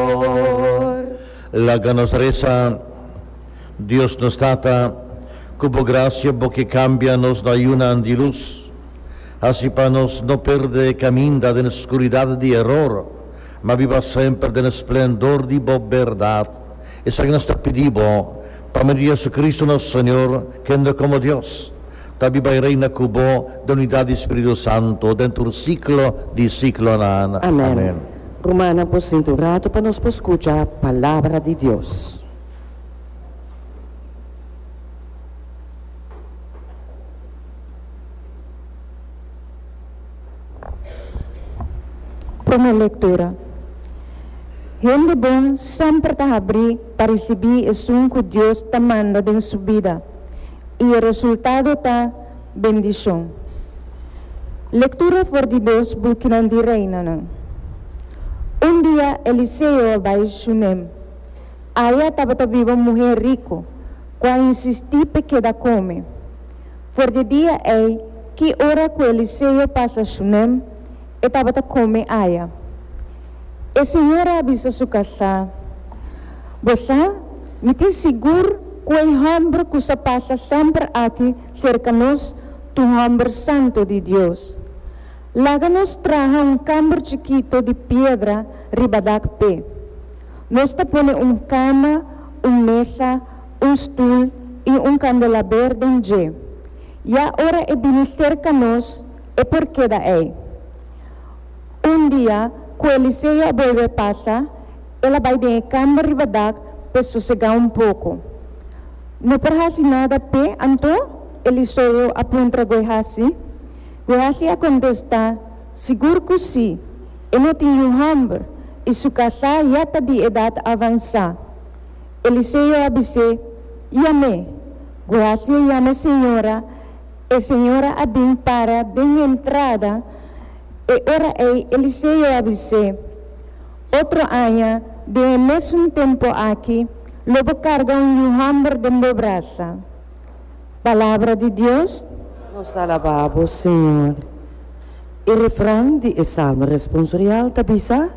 Señor. Laga nos resa. Dios nos Tata, cu bo gracia bo ke cambia nos na yunan di luz, haci pa nos no perde caminda den scuridad di error, ma biba semper den splendor di bo berdad. Esaki nos ta pidi bo, pa medio di Jesucristo nos Señor, kende como Dios ta biba i reina cu bo den unidad di Spiritu Santo den tur ciclo di ciclonan. Amen. Rumannan por sinti un ratu pa nos por scucha Palabra di Dios. Prome lectura. Hende bon semper ta habri pa ricibi esun cu Dios ta manda den su bida y e resultado ta. bendishon. Lektura for di dos bukinan di Reinanan. Un dia Eliseo a bai Shunem. Aya tabata biba un muhé riku ku a insistí p'e keda kome. For di dia ei, ki ora ku Eliseo pasa Shunem, E tabata come aya. E señora a bisa su kasa, Bo sa, mi tin sigur cu e homber cu sa pasa semper aki cerca nos tu homber santo di Dios. Laga nos traha un kamber chikito di piedra riba dak p'e. Nos ta pone un kama, un mesa, un stoel y un kandelaber den dje. Ya ora e bini cerca nos, e por keda ei. Un dia ku Eliseo a bolbe pasa, el a bai den e kamba riba dak pa e sosegá un poko. No por hasi nada p'e, anto? Eliseo a puntra Guehasi. Guehasi a kontestá, Sigur ku sí, e no tin yu hòmber i su kasá ya ta di edat avansá. Eliseo a bis'é, I am'é, Guehasi a yama e señora, E señora a bin para den e entrada. E ora ei Eliseo a bis'é, Otro aña den e mésun tempu aki lo bo karga un yu hòmber den bo brasa. Palabra di Dios. Nos ta alabá Bo, Señor. E refran di e salmo responsorial ta bisa,